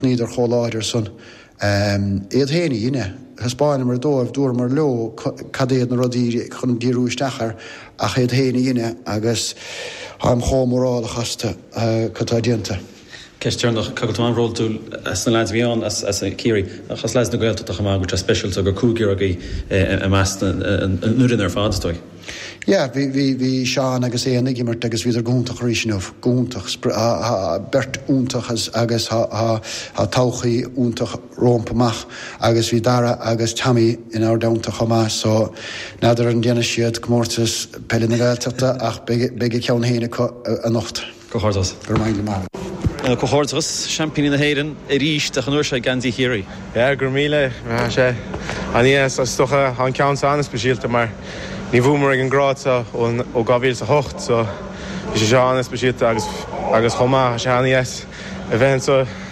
Bhíodar chomh láidir san. Iad féin a dheineadh. Thaispeáineamar dóibh, dúramar leo cad iad na rudaí chun díriú isteach air, ach iad féin a dheineadh agus táim chomh mórálach astu. Cad tá déanta? Ceist dheireanach, gan dabht tá tú an-bhródúil as na leaids a bhí ann, as Ciarraí, ach as leaids na Gaeltachta chomh maith, go bhfuil sé speisialta gur cúigear agaibh i measc na foirne ar fad, is dóigh. Yeah, bhí, bhí, bhí Seán agus Éanna ag imirt agus bhíodar go hiontach arís inniu, go hiontach. Spr, tá, tá, beirt iontach iad agus tá, tá, tá todhchaí iontach rompu amach agus bhí Dara agus Tommy ann ard iontach chomh maith so n'fheadar an ndéanfaidh siad Comórtas Peile na Gaeltachta ach beidh, beidh a gceann féin acu anocht. Comhghairdeas! Go raibh maith agat, a Mháire! Comhghairdeachas, Seaimpíní na hÉireann arís ach an uair seo i geansaí Chiarraí. Yeah, go raibh míle! Tá sé an-iontach, is dócha an ceann so an-speisialta mar ní bhuamar ag an grád seo ó 2008 so bhí sé seo an-speisialta agus chomh maith tá sé an-deas a bheith anseo.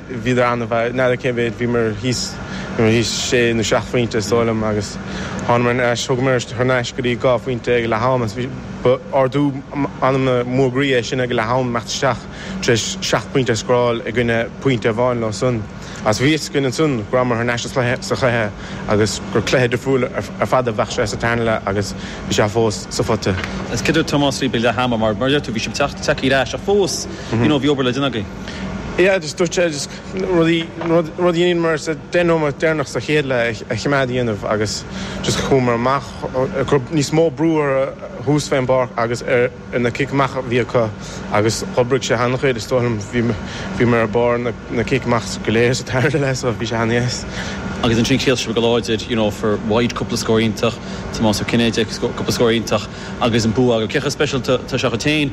Bhíodar an-mhaith, n'fheadar cé mhéad, bhíomar thíos, bhíomar thíos sé nó seacht phointe is dóigh liom agus thánamar ar ais, thugamar thar n-ais go dtí dhá phointe ag leath-am agus ba ardú anama mór groí é sin ag leath-am imeacht isteach tar éis seacht bpointe a scóráil i gcoinne pointe amháin leo san agus bhí a fhios againn ansan go rabhamar thar n-ais sa chluiche agus gur cluiche difriúil ar fad a bheadh sé sa tarna leath agus bhí sé fós sa phota. Is cinnte Tomás, ag leath ama mar a deir tú, bhí sibh ag teacht ar ais ach fós you know bhí obair le déanamh agaibh. Yeah, just dúirt sé just rudaí, rudaí a dheineamar sa 10 nóiméad deireanach sa chéad leath a choimeád á dhéanamh agus just chuamar amach, chur níos mó brú orthu thuas an pháirc agus ar na cic amach a bhí acu agus d'oibrigh sé an-chuid is dóigh liom. Bhíomar ar barr na cic amach go léir sa tarna leath so bhí sé an-deas. Agus ansin chríochnaigh sibh go láidir, you know, Gearóid White cúpla scór iontach, Tomás Ó Cinnéide cúpla scór iontach agus an bua agaibh. Cé chomh speisialta atá seo dhuit féin?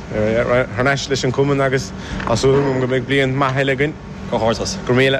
Thar n-ais leis an cumann agus tá súil agam go mbeidh bliain maith eile againn. Comhghairdeas. Go raibh míle.